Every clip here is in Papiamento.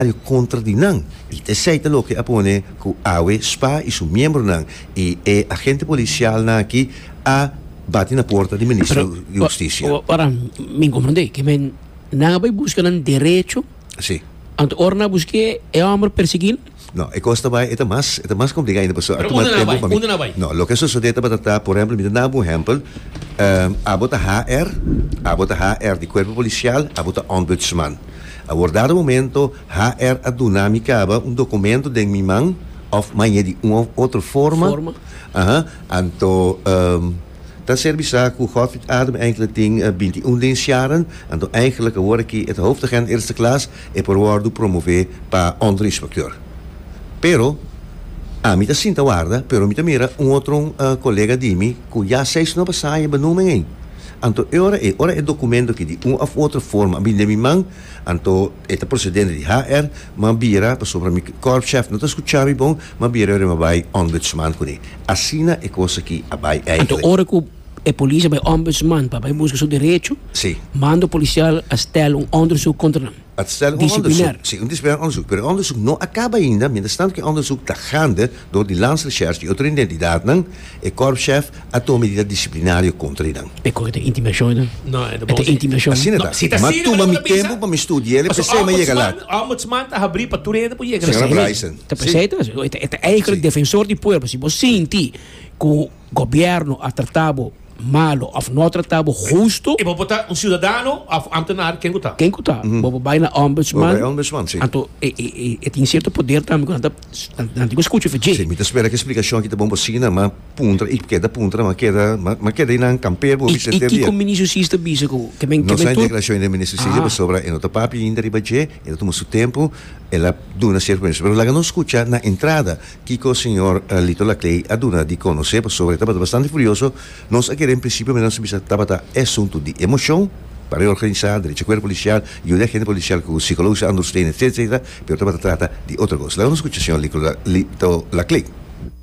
el contra di nan y ta eseyta loke a pone cu awe spa y su miembronan y e agente policial nan aki a bati na puerta di Ministro di Husticia. Ora mi comprende que men nan a bay busca nan derecho, Si. anto ora nan a busque e homber persegui nan. No, e cos ta bay e ta mas e ta mas complica ainda paso a Pero tuma unda nan a tempo bay? pa mi. Unda nan a bay? No, loke a sosode tabata ta, por ehempel mi ta dana bo un ehempel, abo ta HR, abo ta HR di cuerpo policial, abo ta ombudsman. Abordado momento HR a duna mi caba un documento den mi man of mañe di un of otro forma, aha, anto ehm ta serbi sa cu Godfried Adem eigenlijk tin binti i un den Sharon, anto eigenlijk awor aki e ta hoofdagent eerste klas, e por wordo promove pa onderinspecteur. Pero ami ta sinta warda, pero mi ta mira un otro colega di mi cu ya seis no a basaya e benoemen ei. Anto e ora ei, ora e documento aki di un of otro forma a bini den mi man, anto e ta procedente di HR, m'a bira, pasobra mi korpschef no ta scucha mi bon, m'a bira yori m'a bay ombudsman cune. Asina e cos aki a bay Anto eigenlijk. ora cu e policia bay ombudsman pa bay busca su derecho, Si. mando policial a stel un onderzoek contra nan. A stel un onderzoek, si, un disciplinair onderzoek, pero e onderzoek no a kaba ainda, mientras tanto ku e onderzoek ta gande dor di Lans Recherche i otro identidatnan, e kòrpschef a tuma medida disiplinario kontra di nan. Pe kòrda ta intimidashon ena? No, e ta bon si. Asina ta. Si ta asina, pero no ta bisa. M'a tuma mi tempu pa mi studi'é, el a p'esei m'a yega lat. Paso Ombudsman ta habrí pa tur hende por yega lat. Señora Braisen. Ta p'esei ta. E ta èiklek defensor di pueblo. Si bo sinti ku. Gobierno a trata bo malo of no a trata bo husto. E bo por ta un ciudadano of ambtenaar ken cu ta? Ken cu ta? Bo por bay na ombudsman, anto e tin cierto poder tambe cu nan ta nan tin cu scucha fa dje. Si, mi ta spera cu e splicacion aki ta bon pa asina, ma puntra y keda puntra, ma keda ma keda y nan campea bo bisa ter dia. Y kico Ministro Sis ta bisa cu ke men ke men tur? No sa e declaracion di Ministro Sis ebe pasobra e no ta papia ainda riba dje, e ta tuma su tempo, el a duna cierto permiso, pero laga nos scucha na entrada. Kiko Señor Lito Laclay a duna di conoce pasobra e tabata bastante furioso, Nos a kere en principio me nos a bisa tabata e asunto di emocion, pa reorganisa, derecho cuerpo policial, yuda e agente policial cu psicologische ondersteunen etc etc pero tabata trata di otro cos. Laga nos scucha Señor Lito Laclay.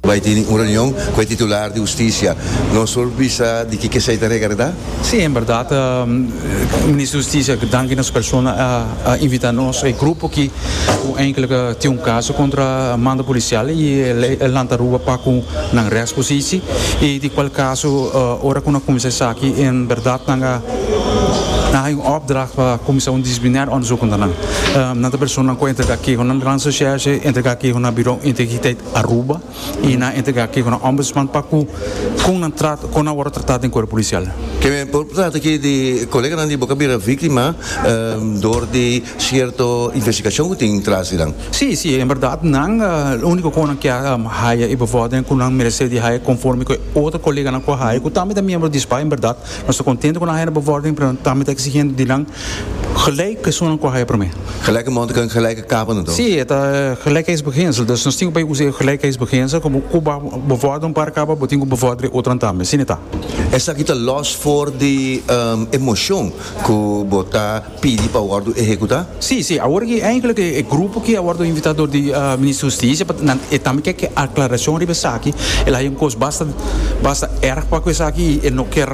Bay tin un reunion cu e titular di Husticia. Nos por bisa di ki ke esey ta rega, reda? Sí, en berdad, Minister di Husticia, danki na su persona, a invita nos, e grupo aki, cu eindelijk tin un caso contra manda policial y e lanta Aruba pa cu nan rest cu sisi. Y di cual caso, ora cu nan cuminsa esaki, en berdad nan a hay un opdracht pa cuminsa un disciplinair onderzoek contra nan. Nan ta personanan cu a entrega kehonan Randstadsheriffschef, entrega kehonan na Bureau Integriteit Aruba. y nan a entrega aki cu nan Ombudsman pa cu con nan trato, con nan worde trata den Cuerpo Policial. Ke men por trata ki di coleganan di bo cu a bira victima door di cierto investigacion cu tin tras di nan? Si, si, en berdad nan lo unico cu nan kier haya y bo worde den cu nan merece di haya conforme cu e otro coleganan cu a haya, cu tambe ta miembro di sba, en berdad nos ta contento cu nan haya na bo worde, pero nan tambe ta exigente di nan Gelijk personanan ku a haya promé. Gelijke montiken, gelijke kapennan to? Sí, e ta gelijkheidsbeginsel. Dus nos tin ku bai usa e gelijkheidsbeginsel komo ku bo bevòrder un par kaba, bo tin ku bevòrder e otran tambe. Sí, nita? Esaki ta lòs for di e moshon ku bo ta pidi pa wòrdu ehekutá? Sí, sí. Awor aki eindelijk e grupo ki a wòrdu invitá dor di Minister Hustisia, pa nan e tambe ke ke aklarashon riba esaki. El haya un kos basta basta èrg pa ku esaki i e no kier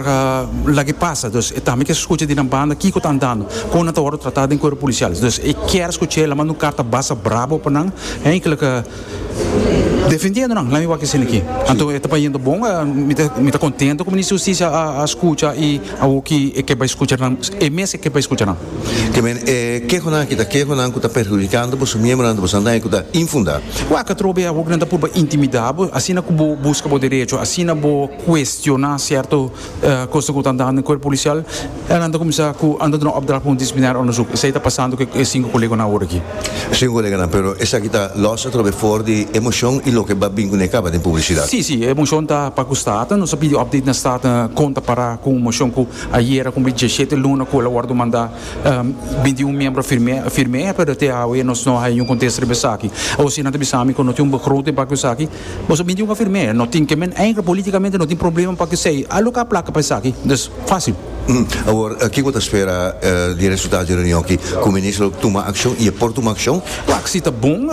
lag'e pasa. Entonces e tambe kier scucha di nan banda kico ta andando, con nan ta wordo trata den cuerpo policial. Entonces e kier scucha e lama un carta basa brabo pa nan, eigenlijk defendiendo nan, lami wak asina aki. Anto e ta pa yendo bon, mi ta contento cu Minister di Husticia a scucha y awoki e ke bay scucha nan, e mes e ke bay scucha nan. Te meen e kehonan aki ta kehonan cu ta perhudicando boso miembronan di boso andan cu ta infunda. Wak atrobe bay awoki nan ta purba intimida bo, asina cu bo busca bo derecho, asina bo cuestiona cierto. Kosnan ku ta andá den kuerp polisial elnan ta kuminsá ku anda duna opdracht pa un disiplinario ondesuk. Esei ta pasando ku e sinku koleganan awor aki. E sinku koleganan, pero esaki ta lòs atrobe for di e moshon i loke ba bin ku ne kaba den publisidat. Sí, sí, e moshon ta pa ku Staten. Nos a pidi opdate na Staten kon ta pará ku un moshon ku ayera kumpli diesshete luna ku el a wòrdu mandá bin di un miembro firmé, pero te awe nos no a haña niun kontesto riba esaki. Awor si nan ta bisa mi ku no tin un begroting pa ku esaki, Boso bin tin un afirmé, no tin ke men enkele politikamente no tin problema pa kesey a lo ke a plaka pa esaki. Dus, fásil. Awor, ki bo ta spera di e resultado di e reunion aki? Ku Minister lo tuma akshon i e por tuma akshon? Pak si ta bon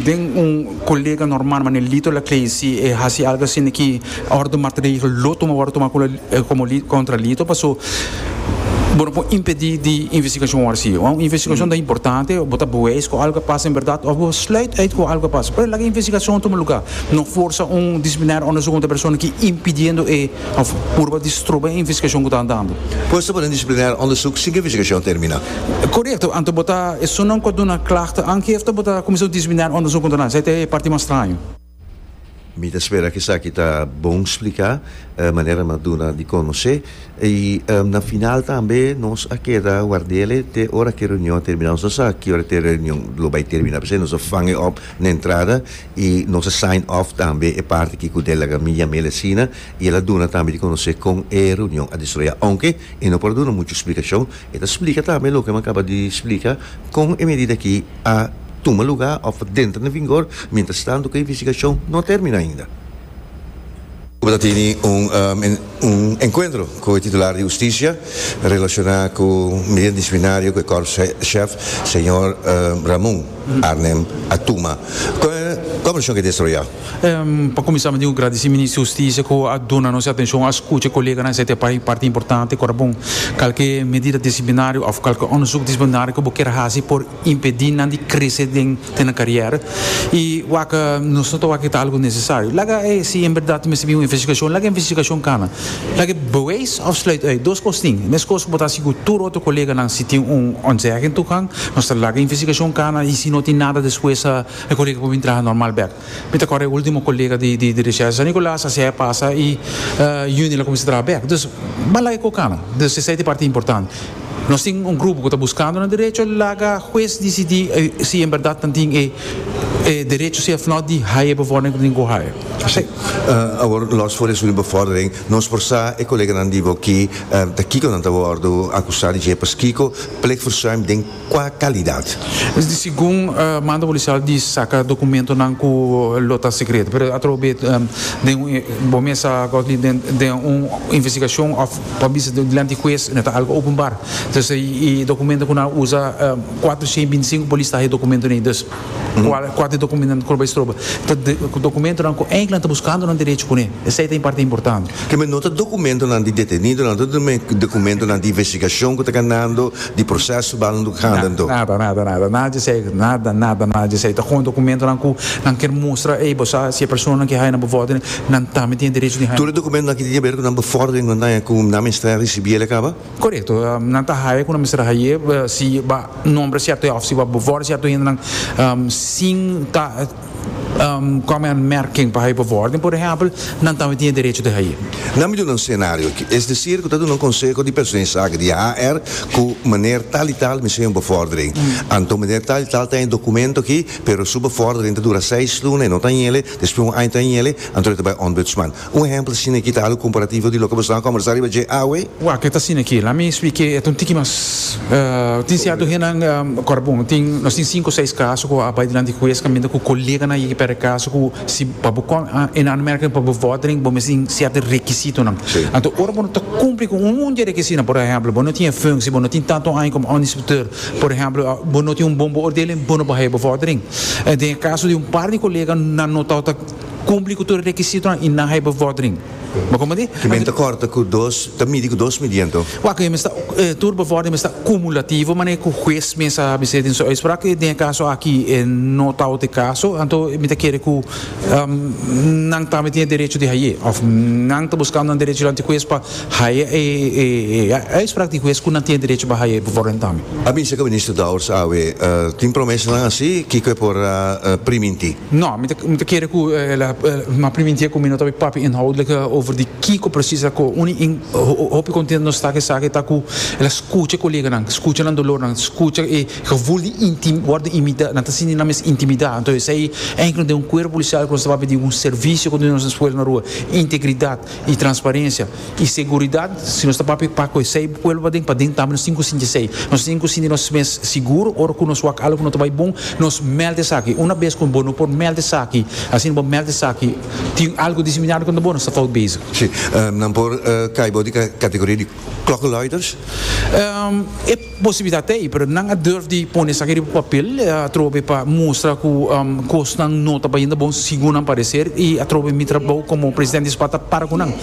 den un kolega normal manera Lito Laclay si e hasi algu asina ki orde matregel lo tuma wòrdu tuma komo kontra Lito paso bo no por impedí di investigashon wòrdu sigue. Wan un investigashon ta importante, bo ta beweis ku algu a pasa en bèrdat òf bo sluit uit ku algu a pasa. Pero laga e investigashon tuma lugá. No forsa un disiplinario òndersuk kontra e persona ku impidiendo e òf purba di stroba e investigashon ku ta andando. Bo esta pone un disiplinario òndersuk sin ku e investigashon a terminá. Korekto, anto bo ta esunnan ku a duna klagte aangehefte bo ta kuminsá un disiplinario òndersuk kontra nan. Esei ta e parti mas straño. Mi ta spera cu esaki ta bon splica manera no a duna di conoce. Y na final tambe nos a keda wardele te ora cu e reunion a termina. Nos no sa ki ora e reunion lo bay termina pesey nos a fange op na entrada y nos a sign off tambe e parti ki cu Delaga mi yamel asina y el a duna tambe di conoce con e reunion a desroya. Aunke e no por a duna mucho splicacion. E ta splika tambe loke mi a kaba di splika kon e medida aki a tuma lugá òf ta dentra na vingor mientras tanto ku e investigashon no a terminá ainda. Bo ta tene un un enkuentro ku e titular di Hustisia relashoná ku medida disiplinario ku e Kòrps Shèf señor Ramon Arnem a tuma. Kon e konversashon ke destroyá? Pa kuminsá mi tin ku gradisí Minister di Hustisia ku a duna nos e atenshon, a skucha e koleganan esei ta e parti importante. Kòrda bon, kalke medida disiplinario òf kalke òndersuk disiplinario ku bo kier hasi por impedí nan di krese den nan karièra. I wak nos no ta wak ku e ta algu nesesario. Laga si en bèrdat mester bin un investigashon, laga e investigashon kana. Laga e beweis òf sluit ui. Dos kos tin. E mes kos ku bo ta hasi ku tur otro koleganan si tin un ontzèging tukán, nos ta laga e investigashon kana i si no tin nada despues a. E colega por bin traha normal bek. Mi ta corda e ultimo colega di di recherche San Nicolas a sea pasa y Juni el a cuminsa traha bek. Dus b'a laga e cocana. Dus esey ta e parti importante. Nos tin un grupo cu ta buscando nan derecho laga huez dicidi si en berdad nan tin e derecho si of not di haya e bevordering cu tin cu haya. Asey. Awor los for esun di bevordering nos por sa e coleganan di bo ki ta kico nan ta wordo acusa di dje paskico plichtverzuim den. Kua kalidat? Segun manda polisial di saka dokumentonan ku lo ta sekreto, pero atrobe b'e den un, bo mesa Godley, den un investigashon òf pa bisa dilanti di hues mester algu openbar. Entonces e dokumento ku nan usa, kuater shen binti sinku polis ta haña e dokumentonan ei. Kual ku ati dokumentonan ku lo bai stroba? Ta dokumentonan ku enkla nan ta buskando nan derecho kuné. Esei ta un parti importante. Kemey no ta dokumentonan di detenidonan, no ta dokumentonan di investigashon ku ta ganando, di proseso bal nan tabata ganando. Nada, nada, nada, nada di esei. Nada, nada, nada di esei. Ta kon dokumentonan ku nan kier mustra, ey, bo sa si e personanan ki haya nan bevòrdering, nan tambe tin e derecho di haya. Tur e dokumentonan ki tin ke ber ku nan bevòrdering, nan ta haya ku nan mester risibí el e kaba? Korekto, nan ta haya ku nan mester haya si ba nombra sierto hende of si ba bevor sierto hendenan sin ta kòmen anmèrking pa haya bevor den, por ehèmpel, nan tambe tin e derecho di haya. Nan mi duna un senario aki, es desir ku ta duna un konseho di persona insake di HR ku meneer tal i tal mester haya un bevordering. Anto meneer tal i tal ta haya e dokumento aki, pero su bevordering ta dura seis luna, e no ta haya, despues un aña ta haya, anto e ta bai Ombudsman. Un ehempel asina aki ta alu komparativo di loke boso a kombersá riba dje awe. Wak, e ta asina aki. Lami esplika e et un tiki mas. Tin sierto hennan kòrda bon, tin, nos tin sinku seis kaso ku a bai dilanti di hues kaminda ku koleganan yeki pèrdè kaso ku si pa bo kòm en aanmerking pa bo vòrdering bo mester tin sierto rekisitonan. Anto ora bo no ta kumpli ku un di e rekisitonan, por ehempel, bo no tin e funsi, bo no tin tantu aña kòm ònderspeuteur, por ehempel, bo no tin un bon beoordeling, bo no por haya bo vòrdering. Den e kaso di un par di kolega nan notá. Cumpli cu tur e requisitonan y nan hay bevordering. Bo comprende? Ki Anto, menta corta cu dos, ta midi cu dos midi anto? Waak, e mester, eh, tur bevordering mester cumulativo, maneer cu huez mester a bis'e den su uitspraak, cu den e caso aki e no tau t'e caso, anto mi ta kere cu, ehm, nan tambe tin e derecho di hay'e, of nan ta buscando nan derecho dilanti huez pa haya e, e, e uitspraak di huez cu nan tin e derecho pa haya e bevordering tambe. A bisa cu Minister Dowers awe, eh, tin promesanan asi, kico e por a priminti? No, mi ta kere ku el a ma primintia ku mi no ta bai papia inhoudlik over di kiko presis a koe. Uni in hopi kontentu nos ta ku e saki ta ku el a skucha e koleganan, skucha nan dolornan, skucha e gevul di wòrdu intimida, nan ta sinti nan mes intimida. Anto esei enkele no den un kuerpo polisial ku nos ta papia di un servisio kontinua na nos eskuela na rua, integridat i transparensia. y seguridad, si nos ta papia pa cu esey pueblo paden, paden tambe nos tin cu sinti esey. Nos tin cu sinti nos mes seguro ora cu nos wak algo cu no ta bay bon, nos meld esaki. Una bes cu bo no por meld esaki, asina bo meld esaki, tin algo diseminado contra bo, nos ta fout bezig. Si, nan por cay bo di categoria di klokkenluiders. E. Posibilidat ta ei, pero nan a durf di pone esaki riba papel atrobe pa mustra ku kosnan no ta bayendo bon segun nan pareser i atrobe mi trabou komo presidente di SPAT ta para ku nan.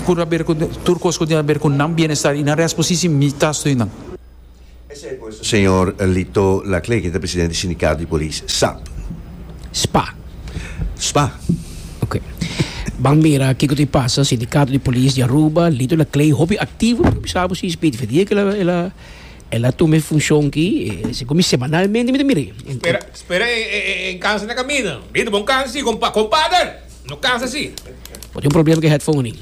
Tur a ber ku tur kos ku tin a ber ku nan bienestar i nan resto por si si mi ta stui nan. Esei pues señor Lito Laclé, ku ta presidente di sindikato di polis, sap. Spa. Spa. Ok. Ban mira kiko ta e pasa. Sindikato di Polis di Aruba, Lito na Clay, hopi aktivo pero mi sa bo si Speedy Fedier ke el a tuma e funshon ki. Esei ku mi semanalmente mi ta mira e. Spera e kansa na kaminda. Bida bo kansa si kompader. No kansa si. Bo tin un problema ku e headphone anin.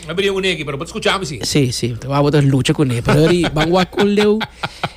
Mi a bini un eki pero bo ta skucha mi si. Si, si. Mi ta wak bo ta lucha kuné pero ban wak kon leu.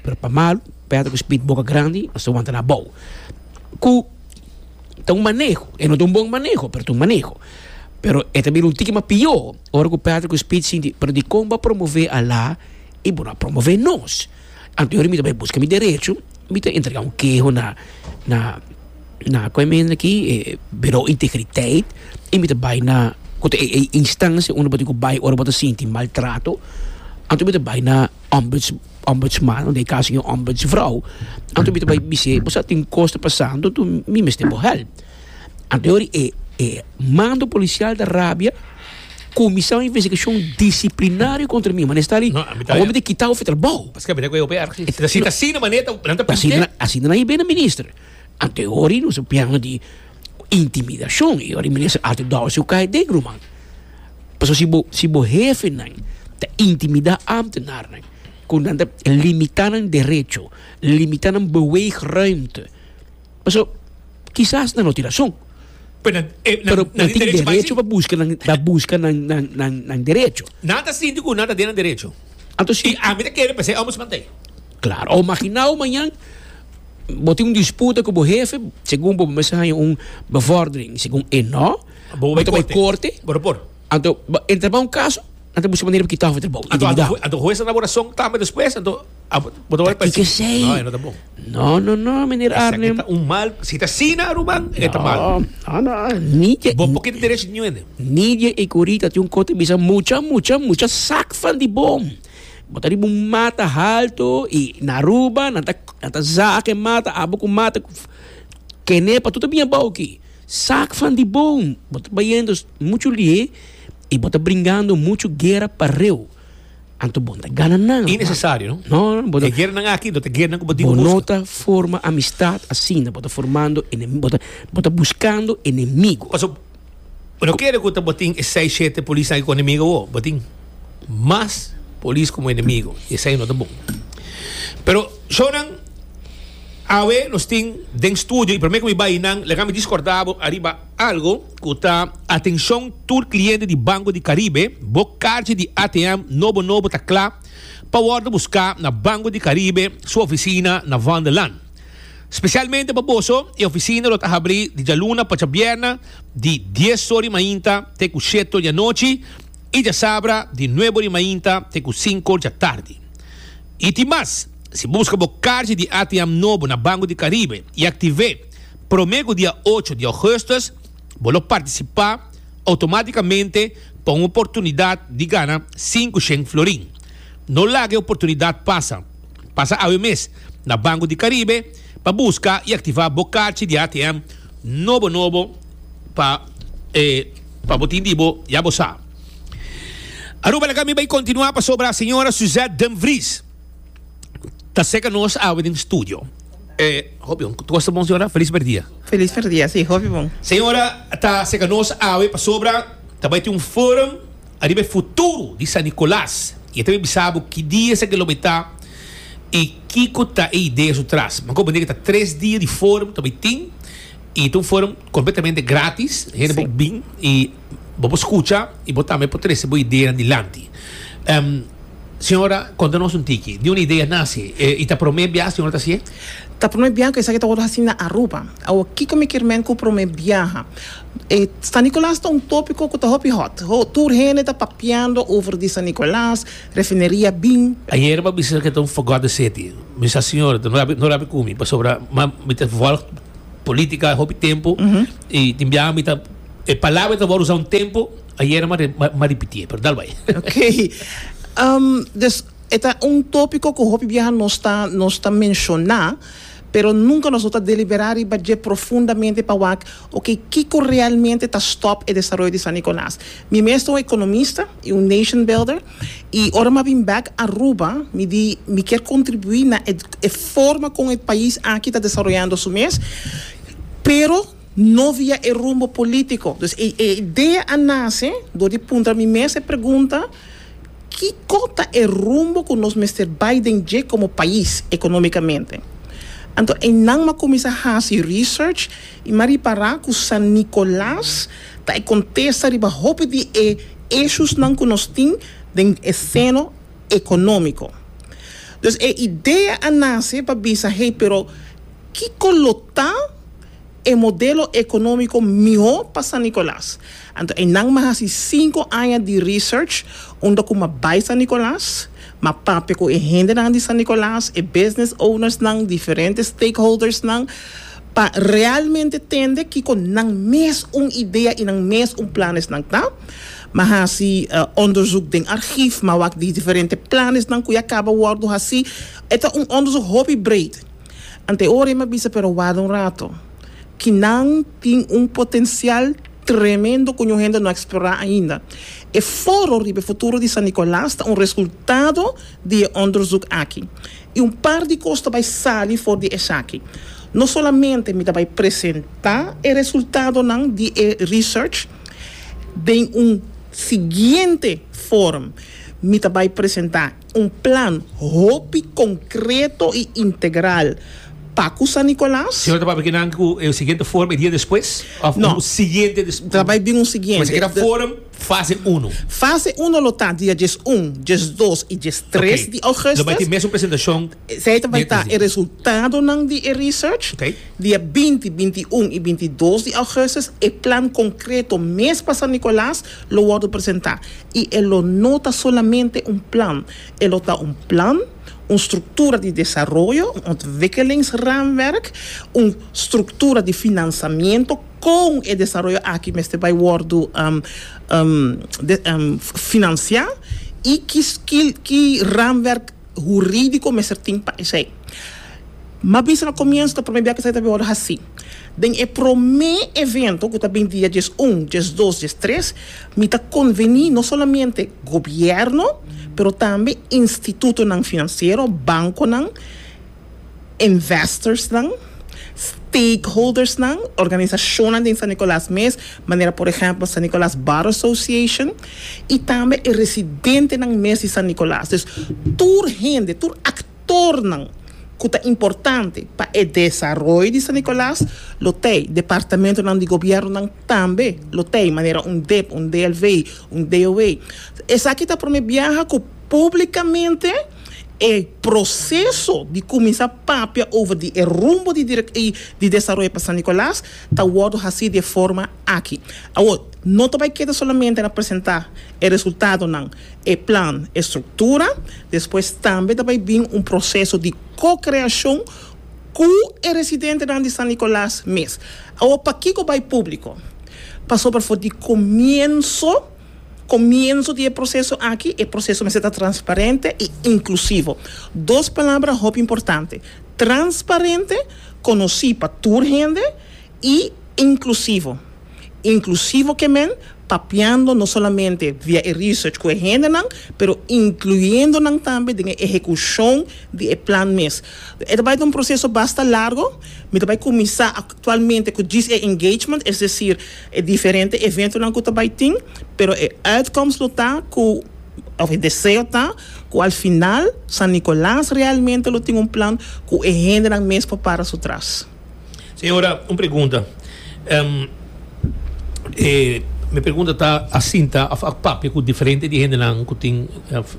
pero pa malu pèrdè ku spit boka grandi no sa wanta na bou ku ta un maneho e no ta un bon maneho pero ta un maneho pero e ta bira un tiki mas pió ora ku pèrdè ku spit sinti pero dikon bo a promove ala i bo no a promove nos anto yori mi ta bai buska mi derecho mi ta entrega un keho na na ku e men aki e biro integriteit i mi ta bai na ku ta e e instancia unda bo tin ku bai ora bo ta sinti maltrato anto mi ta bai na Ombuds, Ombudsman, unda e caso e Ombudsvrouw, anto mi ta bai bis'é, bo sa tin cos pa sa, anto tu mi mester bo help. Anto e ora e e mando policial ta rabia, cuminsa un investigacion disciplinario contra mi, mane sta li, awor mi ta kita of e trabao. Pasobra cu e hopi erg, si ta asina mane nan ta pidi ke. Asina nan a bini minister. Ante hori nos a pianga di intimidacion y hori minister Arthur Dowers cu cay den ruman pasobra si bo si bo hefenan ta intimida ambtenarnan cu nan ta limita nan derecho limita nan beweegruimte pasobra kisas nan no tin razon pero nan tin derecho pa busca nan pa busca nan nan derecho nan ta sinti cu nan ta den nan derecho y ami ta kere pa ser ombudsman tey claro o maginao mañan. Bo tin un disputa ku bo hefe, segun bo, bo mester haña un bevòrdering. Segun e no, bo ta bai korte. Bo ta por. Anto, e trabou un kaso, nan ta buska manera pa kita òf e trabou. Anto, anto, anto hues ta dá bo rason tambe despues? Anto, afo, bo ta wòrdu p'esei. Tati kesei. No, e no ta bon. No, no, no, meneer Arnhem. Esaki ta un mal, si ta asina, Aruman, e ta mal. No, no, no, ni dje. Bo por keda derechi di ñuende. Ni dje e ku Rita tin un kos ta bisa mucha, mucha, mucha sak van di bom. Bo ta riba un mata haltu i na Aruba nan ta nan ta zaka e mata abo ku mata ku kene pa tur ta bini abou aki. Sak fan di bon. Bo ta bayendo muchu lihe i bo ta bringando muchu guera pa reu. Anto bo no ta gana nan, mano. Innesesario, no? No. E gueranan aki no ta gueranan ku bo tin ku buska. Bo no ta forma amistat asina. Bo ta formando enemi-, bo ta bo ta buskando enemigu. Pasobra. Pero kere ku ta bo tin e seis shete polisnan aki ku enemigo bo, bo tin mas polis komo enemigo i esei no ta bon. Pero shownan awe nos tin den studio i promé ku mi bai i nan laga mi diskordá bo ariba algu ku ta atenshon tur kliente di Banko di Karibe bo karchi di ATM nobo nobo ta kla pa wòrdu buská na Banko di Karibe su ofisina na Vondelland. Spesialmente pa boso, e ofisina lo ta habrí di djaluna pa djabièrnè di dies sor di mainta te ku sheto di anochi i djasabra di nuebo di mainta te ku sinkor di atardi. I tin mas, si bo buska bo karchi di ATM nobo na Banko di Karibe i aktiv'é promé ku dia ocho di Ougùstùs, bo lo partisipá outomátikamente pa un oportunidat di gana sinku shen florin. No laga e oportunidat pasa! Pasa awe mes na Banco di Caribe pa busca y activa bo carchi di ATM nobo nobo pa e pa bo tin di bo ya bo sa. Aruba Laga mi bay continua pasobra Señora Suzette Denvries ta seca nos awe den studio. E hopi bon. Cu costa bon Señora? Feliz per dia. Feliz per dia si hopi bon. Señora ta seca nos awe pasobra ta bay tin un forum. Ariba e futuro di San Nicolas y e ta be bisa bo ki dia esaki lo bay ta y kico ta e idea su tras. Bo comprende cu ta tres dia di forum ta bay tin y ta un forum completamente gratis. Hende por bin y bo por scucha y bo tambe por trece bo ideanan dilanti. Ehm, Señora, conta nos un tiki, di un idea nace y ta prome bia Señora ta hacié? Ta prome bia cu esaki ta worde haci na Aruba. Awo, kico mi kier men cu prome biaha? San Nicolas ta un tópiko ku ta hopi hòt. Tur hende ta papiando over di San Nicolas, refineria bin. Ayer mi a bisa ku e ta un fogòt di seti. Mi sa, Siñor, no rabi ku mi, pasobra mi ta vòlg polítika hopi tempu i tin biaha mi ta, e palabra mi ta wòrdu usá un tempu, ayer mi a ripitié, pero dal bai. Oké. Dus, e ta un tópiko ku hopi biaha nos ta, nos ta menshoná, pero nunka nos no ta deliberá riba dje profundamente pa wak Oke, kiko realmente ta stòp e desaroyo di San Nikolas? Mi mes ta un ekonomista i un nation builder, i ora mi a bin bèk Aruba mi di mi kier kontribuí na e e forma kon e pais aki ta desaroyando su mes, pero no via e rumbo polítiko. Dus e e idea a nase dor di puntra mi mes e pregunta, Kiko ta e rumbo ku nos mester bai den dje komo pais, ekonómikamente? Anto einan mi a kuminsá hasi research. I ma ripará ku San Nikolas ta e kontesta riba hopi di e eshusnan ku nos tin den e seno ekonómiko. Dus e idea a nase pa bisa, hey, pero kiko lo ta e modelo ekonómiko mihó pa San Nikolas? Anto einan ma hasi sinku aña di research unda ku ma bai San Nikolas, ma papia ku e hendenan di San Nikolas, e business ownersnan, diferente stakeholdersnan, pa realmente tende kiko nan mes un idea i nan mes un plan esnan ta, m'a hasi onderzoek den archief, m'a wak di diferente plan esnan ku ya kaba wòrdu hasi, e ta un onderzoek hopi breed. Ante ora m'a bisa pero wada un rato, ki nan tin un potensial tremendo ku ñu hende no a eksplorá ainda. E foro riba e futuro di San Nicolas ta un resultado di e onderzoek aki. I un par di kos ta bai sali for di esaki. No solamente mi ta bai presentá e resultadonan di e research den un siguiente forum, mi ta bai presentá un plan hopi konkreto i integral pa ku San Nicolas. Sino ta papia kinan ku e siguiente forum e dia despues òf un siguiente despues? No, ta bai bin un siguiente. Pues e keda forum. Fase uno. Fase uno lo ta dia djes un, djes dos i djes tres di ougustus. Lo bai tin mesun presentashon Esei ta bai ta e resultadonan di e research. Dia binti, binti un i binti dos di ougustus e plan konkreto mes pa San Nikolaas lo wòrdu presentá i e lo no ta solamente un plan, e lo ta un plan, un struktura di desaroyo, un ontwikelingsraamwerk, un struktura di finansamiento, kon e desaroyo aki mester bai wòrdu finansiá i ki ramwerk hurídiko mester tin pa esei. M'a bisa na komienso ta promé bia ku esei ta bin wòrdu hasí. Den e promé evento ku ta bin dia dies un, dies dos, dies tres, mi ta konvení no solamente gobièrnu pero tambe institutonan finansiero, bankonan, investorsnan, stakeholdersnan, organisashonnan den San Nicolas mes, manera por ehèmpel San Nicolas Bar Association, i tambe e residentenan mes di San Nicolas. Dus tur hende, tur aktornan ku ta importante pa e desaroyo di San Nicolas lo tei. Departamentonan di gobièrnunan tambe lo tei, manera un dep, un DLV, un DOW. Esaki ta promé biaha ku publikamente. E proseso di kuminsá papia over di e rumbo di direk i di desaroyo pa San Nicolas ta wòrdu hasí di e forma aki. Awor, no ta bai keda solamente na presentá e resultadonan, e plan, e struktura, despues tambe ta bai bin un proseso di ko-kreashon ku e residentenan di San Nicolas mes. Awor, pakiko bai públiko? Pasobra for di komienso. comienso di e proceso aki, e proceso mester ta transparente y inclusivo. Dos palabra hopi importante, transparente, conoci pa tur hende, y inclusivo. Inclusivo ke men, papiando no solamente via e research cu e hendenan, pero incluyendo nan tambe den e ehecucion di e plan mes. E ta bay ta un proceso basta largo. Mi ta bay cuminsa actualmente cu djis e engagement, es decir, E diferente eventonan ku ta bai tin, pero e uitkomst lo ta ku, òf e deseo ta, ku al final San Nicolas realmente lo tin un plan ku e hendenan mes por para su tras. Señora, un pregunta. E mi pregunta ta asinta, òf a papia ku diferente di hendenan ku tin, òf.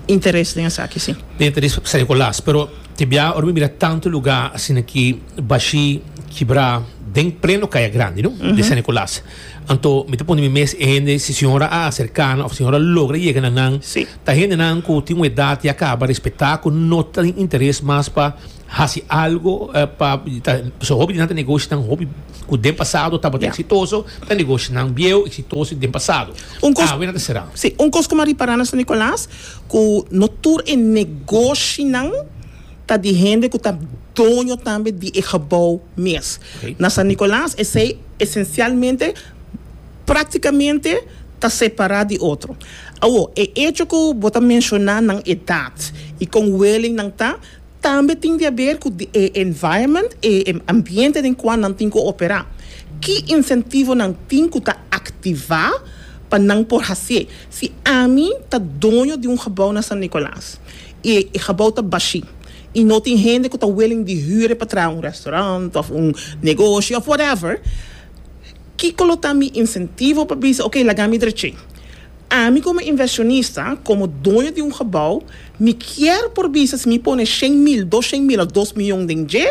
Interes den esaki, si. Den interes San Nicolas, pero te bia ora mi mira tantu lugá asin aki. Bashí, kibrá, den pleno kaya grandi, no? De San Nicolas. Anto mi ta pone mi mes e hende, si señora a acerca nan, of señora logra yega na nan, Sí. ta hendenan cu tin un edad ya caba respetá, cu no ta tin interes mas pa haci algo, eh, pa, ta, pasobra hopi di nan ta negoshonan hopi cu den pasado tabata Ya. exitoso, ta negoshonan bieuw, exitoso den pasado. Un cos- Awe nan ta será. Sí, un cos cu mi a ripará na San Nicolas, cu no tur e negoshinan, ta di hende ku ta doño tambe di e gebou mes. Na San Nicolas esei esencialmente, prácticamente, ta separá di otro. Awo, e hecho ku bo ta menciona nan edad i kon willing nan ta, tambe tin di haber ku di e environment, e ambiente den kua nan tin ku operá. Ki incentivo nan tin ku ta activá pa nan por hacié? Si ami ta doño di un gebou na San Nicolas, E gebou ta bashi i no tin hende ku ta willing di hure pa traha un restaurant òf un negoshi òf whatever. Kiko lo ta mi insentivo pa bisa, Oke, laga mi drechi? Ami komo investionista, komo doño di un gebou, mi kier por bisa si mi pone shen mil, doshen mil òf dos miyon den dje,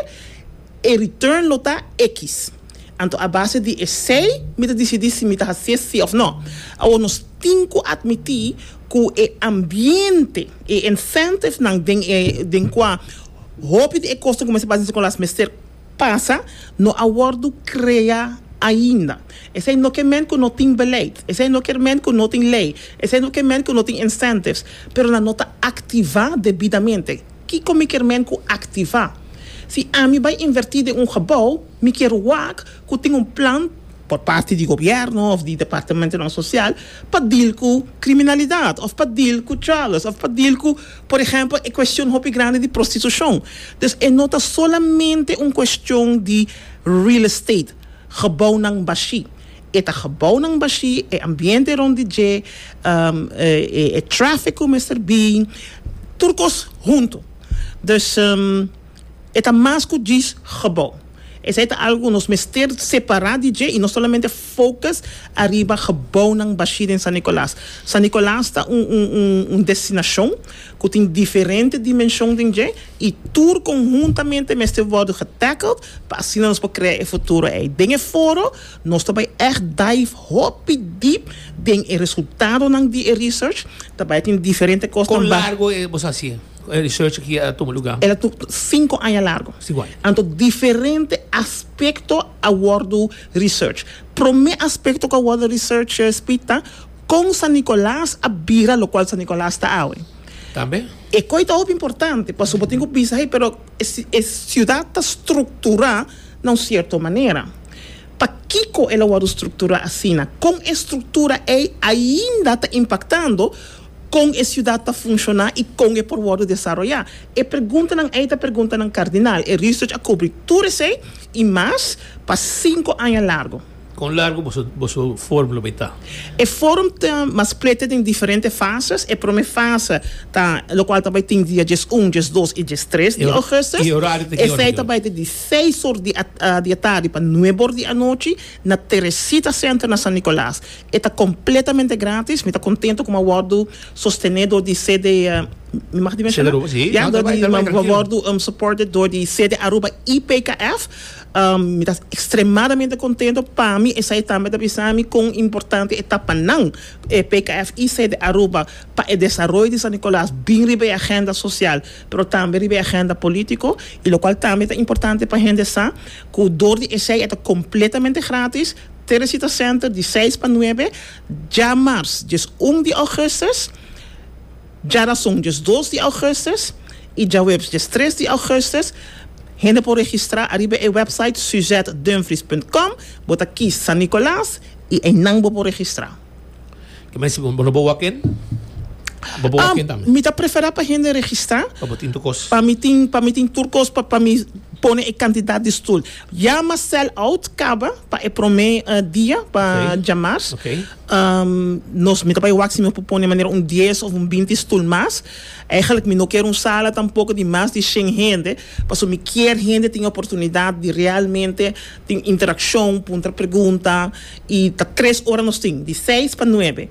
e return lo ta ekis. Anto a base di esei mi ta disidí si mi ta hasié sí òf no. Awor nos tin ku atmití ku e ambiente, e incentivnan den e den kua hopi di e kosnan ku mester pasa den skolas mester pasa, no a wòrdu krea ainda. Esei no ke men ku no tin beleid, esei no ke men ku no tin lei, esei no ke men ku no tin incentivs, pero nan no ta aktivá debidamente. Kiko mi ke men ku aktivá? Si ami bai invertí den un gebou, mi kier wak ku tin un plan por parti di gobièrnu òf di departamentunan sosial pa dil ku kriminalidat òf pa dil ku drogas òf pa dil ku por ehèmpel e kuestion hopi grandi di prostitushon dus e no ta solamente un kuestion di real estate gebounan bashi e ta gebounan bashi e ambiente rond di dje e traffic ku mester bi tur kos huntu dus. E ta mas ku djis gebou. Esei ta algu ku nos mester separá di dje i no solamente focus ariba gebounan bashí den San Nicolas. San Nicolas ta un destinashon ku tin diferente dimenshon den dje i tur konhuntamente mester wòrdu getackled pa asina nos por krea e futuro ei. Den e foro nos ta bai ègt dive hopi dip den e resultadonan di e research. Ta bai tin diferente kosnan. Kon largo e bos hasié? cu e research aki a tuma lugar? El a tur cinco aña largo. Si guai. Anto diferente aspecto a wordo research. Prome aspecto cu a wordo research, Speed, ta con San Nicolas a bira locual San Nicolas ta awe. Tambe. E coy ta hopi importante pasobra bo tin cu bisa hey, pero e ci e ciudad ta structura na un cierto manera. Pakico el a wordo structura asina? Con e structura ey ainda ta impactando? Kon e siudat ta funshoná i kon e por wòrdu desaroyá? E preguntanan ei ta preguntanan kardinal. E research a kubri tur esei i mas pa sinku aña largu. Kon largu boso forum lo bai ta? E forum ta masplete den diferente fases. E promé fase ta lokual ta bai tin dia djes un, djes dos i djes tres di ougùstus. Esei ta bai di seis or di atardi pa nuebe or di anochi na Teresita Center na San Nicolas. E ta completamente gratis. Mi ta contento cu mi a wordo sostene door di CD mi mag di menciona? CD Aruba, si. Mi a wordo supported door di CD Aruba y PKF. Mi ta extremadamente contento. Pa mi esai tambe ta bisa mi con importante e ta pa nan, e PKF y CD Aruba, pa e desaroyo di San Nicolas bin riba e agenda social, pero tambe riba e agenda politico y locual tambe ta importante pa hende sa cu door di esai e ta completamente gratis. Teresita Center di seis pa nuebe dja mars dies un di augustus, dja rason dies dos di augustus y dja webs dies tres di augustus. Hende por registra ariba e website suzetdumfries punt com, bo ta kies San Nicolas y einan bo por registra. Kmen si bo no bo walk in? Bo bo walk in tambe? Mi ta prefera pa hende registra. Pa bo tin tur kos. Pa mi tin pa mi tin tur kos pa pa mi pone e kantidat di stul. Yama sell out kaba pa e prome dia pa dja mars. Nos mi ta bai wak si mi por pone manera un dies of un binti stul mas. Eigenlik mi no kier un sala tampoko di mas di shen hende paso mi kier hende tin oportunidat di realmente. Tin interakshon, puntra pregunta, i ta tres ora nos tin, di seis pa nuebe.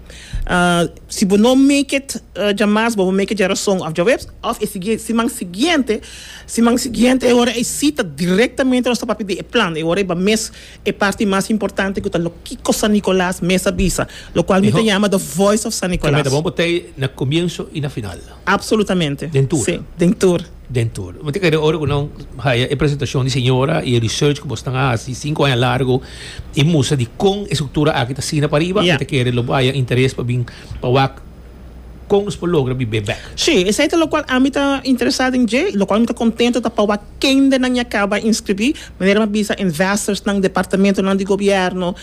Si bo no make it dja mas, bo bo make it dja rason of djaweps, of e sigui siman siguiente. Siman siguiente e ora ei si ta direktamente nos ta papia di e plan, e ora ei ba mes e parti mas importante ku ta lo kiko San Nicolas mes a bisa, lokual mi ta yama the voice of San Nicolas. Kemeta, bo bo ta ei na komienso i na final. Absolutamente. Den tur? Sí, den tur. Den tur. Bo ta kere ora ku nan haya e presentashon di señora i e research ku bo stan a hasi sinku aña largu i mustra di kon e struktura aki ta asina pa riba, bo ta kere lo bo haya interes pa bin pa wak kon nos por logra bib'é bèk. Sí, esei ta lokual ami ta interesá den dje i lokual mi ta kontentu ta pa wak kendenan ya kaba inskribí, manera mi a bisa investorsnan, departamentonan di gobièrnu,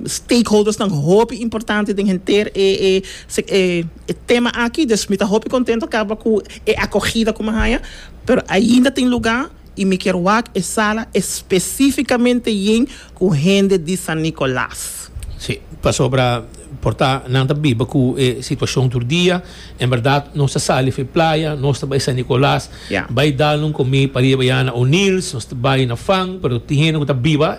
stakeholdersnan hopi importante den henter e E tema aki, dus mi ta hopi kontento kaba ku e akogida ku mi haña, pero ainda tin lugá i mi kier wak e sala espesífikamente yen ku hende di San Nicolas. Sí, pasobra por ta nan ta biba ku e situashon tur dia. En bèrdat nos ta sali for e playa, nos ta bai San Nicolas Ya. bai dal un komí pariba ya na O'Neil's, nos ta bai na Fang, pero tin hende ku ta biba.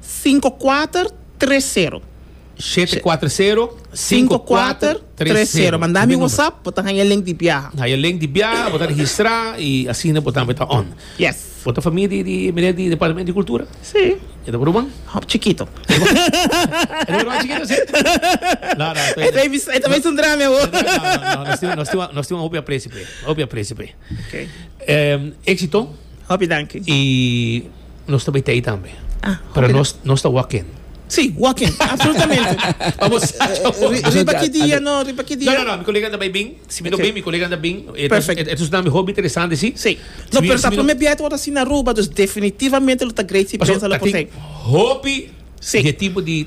Sinku kuater tres sero. Shete kuater sero sinku kuater tres sero. Manda mi whatsapp bo ta haya link di biaha. Haya link di biaha bo ta registra y asina bo tambe ta on. Yes. Bo ta famia di di meneer di departamento di cultura? Si. E ta por ruman? Hoop chikito. E ta por ruman chikito si? No no. E ta bisa un drami awo. No no no nos tin un hopi aprecio p'e. Hopi aprecio p'e. Okay. Um, éxito. Hopi danki. Y nos ta beitei tambe. Ah, Pero hopi nos, nos ta walking. Sí, walking, absolutamente. Vamos, riba ki dia, no, riba ki dia. No, no, no, mi colega anda bij Bing. Si mi no bij, mi colega anda Bing. Perfect. Het is namelijk hobby interessant, zie. Sí. No, pero sa primer bijet wordt así na Aruba, dus definitivamente lo ta great si pensa lo posei. Hobby, de tipo di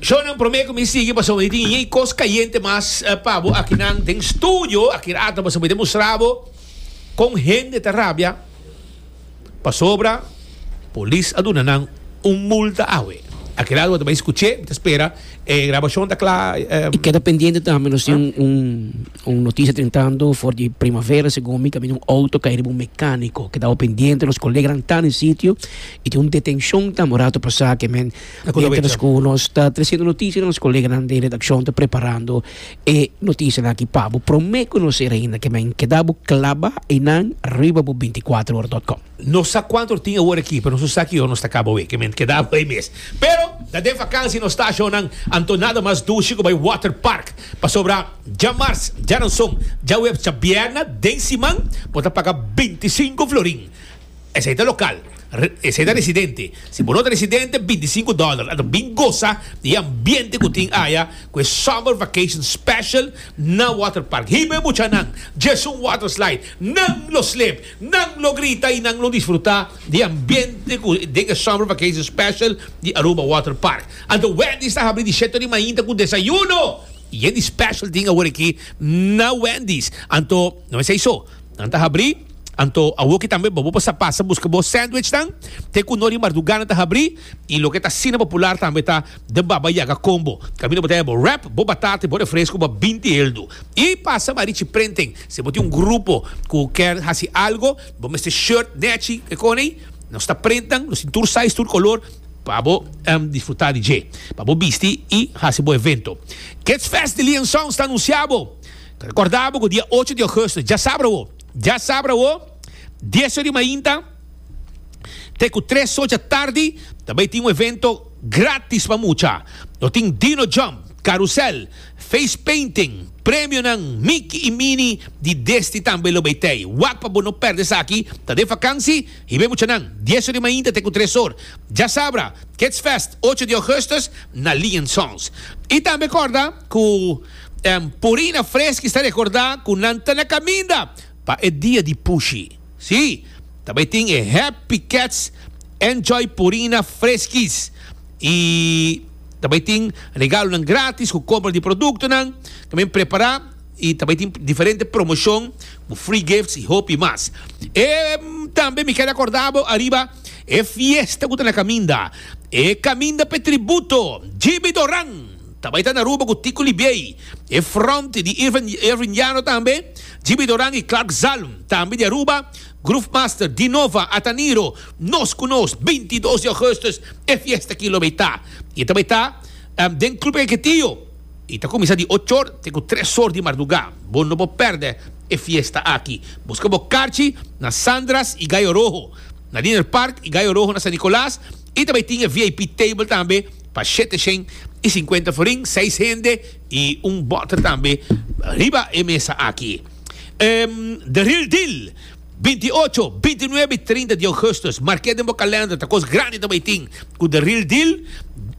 Shownan promé ku mi sigui pasobra i tin yei kos kayente mas pa bo. Akinan den studio aki rato boso por demostrá bo kon hende ta rabia pasobra polis a duna nan un multa awe. Aki rato bo ta bai skuch'é, mi ta spera e grabashon ta kla. I keda pendiente tambe, nos tin un un notisia tentando for di primavera segun mi kaminda un outo kai riba un mekániko. Keda bo pendiente, nos koleganan ta den sitio i tin un detenshon tambe un rato pasá ke men Mientras cu nos ta treciendo noticia nos coleganan den redaccion ta preparando e noticianan aki pa bo. Prome conocer ainda que men keda bo claba einan riba bo binticuatrohora.com. No sa cuanto tin awor aki, pero nos sa ki ora nos ta caba aweke. Men keda bo ei mes. Pero ta den vakansi nos stacionnan anto nada mas dushi cu bay waterpark. Pasobra djamars, djaranson, djaweps, djabierna den siman bo ta paga binticinco florin. Esei ta lokal. Esei ta residente. Si bo no ta residente, binti sinku dòler. Anto bin gosa di e ambiente ku tin aya ku e Summer Vacation Special na Waterpark. Hibe muchanan! Djèsun Waterslide! Nan lo slep, nan lo grita i nan lo disfrutá di e ambiente ku den e Summer Vacation Special di Aruba Waterpark. Anto Wendy's ta habri di sheto di mainta ku desayuno! Yen di special tin awor aki na Wendy's. Anto, no esei so. Nan ta habri. Anto awoki tambe bo por sa pasa buska bo sandwichnan te ku no di mardugana ta habrí i loke ta asina popular tambe ta The Baba Yaga Combo. Kaminda bo ta heba bo wrap, bo batata i bo refresku pa binti heldu. I pasa ba Richie Printing, si bo tin un grupo ku kier hasi algo, bo mester shirt nèchi, e konei, nos ta printan, nos tin tur size, tur kolor pa bo disfrutá di dje, pa bo bisti i hasi bo evento. Kidsfest di Liansons ta anunsiá bo! Ta recorda bo cu dia ocho di agosto, djasabra awo, djasabra awo, dies ora di mainta te cu tres ora dja tardi ta bay tin un evento gratis pa mucha. Nos tin Dino Jump, Carusel, Face Painting, premionan Mickey y Minnie di Desti tambe lo bay tey. Wak pa bo no perde esaki, ta den vakansi, hibe muchanan, dies ora di mainta te cu tres ora, djasabra, Kids Fest, ocho di augustus, na Lee and Sons. Y tambe corda. Cu Purina Freschi sta recorda cu nan ta na caminda pa e dia di Pushi. Si, ta bay tin e Happy Cats Enjoy Purina Freschis y ta bay tin regalonan gratis cu compra di productonan cu men prepara y ta bay tin diferente promocion cu free gifts y hopi mas. E tambe mi ker a corda bo ariba e fiesta cu ta na caminda, e caminda p'e tributo Jimmy Doran. Ta bai ta Naruba ku Tico Libiey, e fronte di Irvin Llano tambe, Jimmy Doran i Clark Zalm, tambe di Aruba, Groovemaster, Dinova, Ataniro, nos ku nos, binti i dos di Augustus e fiesta aki lo bai ta. I ta bai ta den Club El Ketillo i ta kuminsá di ocho or te ku tres or di mardugá. Bo no por pèrdè e fiesta aki. Buska bo karchi na Sandra's i Gallo Rojo, na Dinner Park i Gallo Rojo na San Nicolas i ta bai tin e vip table tambe, pa shete shen i sinkuenta florin, seis hende i un bòter tambe riba e mesa aki. The Real Deal, binti i ocho, binti i nuebe i trinta di ougùstùs, mark'é den bo kalènder, ta kos grandi ta bai tin ku The Real Deal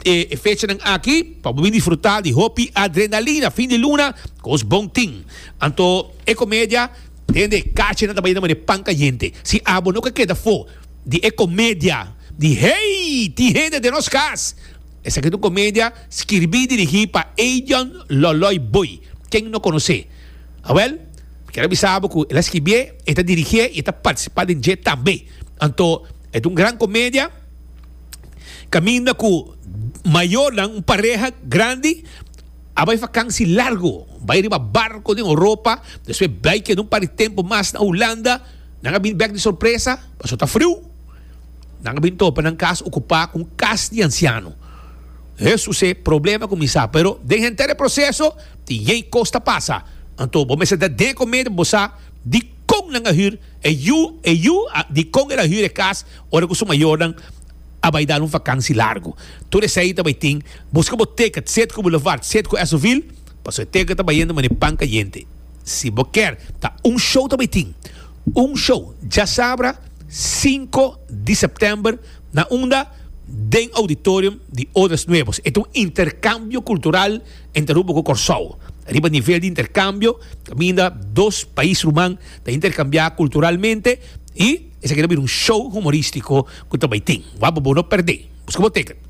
e fechanan aki pa bo bin disfrutá di hopi adrenalina fin di luna, kos bon tin. Anto e komedia den di e kachenan ta bai na manera pan kayente. Si abo no ke keda afó. di e comedia di Hey! tin hende den nos cas! Esaki ta un comedia skirbi y dirigi pa Adrian Loloy Boy. Ken no conoce? Awel, mi kier a bisa bo cu el a skibié, e ta dirigié y e ta participa den dje tambe. Anto, e ta un gran comedia caminda cu mayornan, un pareha grandi, a bay vakansi largo. Bay riba barco den Europa, despues bay keda un par di tempo mas na Hulanda. Nan a bin bek di sorpresa pasobra ta friu. Nan a bin topa nan kas okupá ku un kas di ansiano. E susé, problema kuminsá. Pero den henter e proseso tin yei kos ta pasa. Anto bo mester ta den komede bo sa dikon nan a hür e yu, e yu a, dikon el a hür e kas ora ku su mayornan a bai dal un vakansi largu. Tur esei ta bai tin buska bo teket, set ku bulevard, set ku Esovil. Paso e teka ta bayendo mane pan cayente. Si bo ker ta un show ta bay tin un show djasabra cinco di september na unda den auditorium di Odres Nuevos. E ta un intercambio cultural entre Aruba cu Corsou. Riba nivel di intercambio caminda dos pais ruman ta intercambia culturalmente y esaki ta bira un show humoristico cu ta bay tin. Wak bo bo no perde. Busca bo ticket.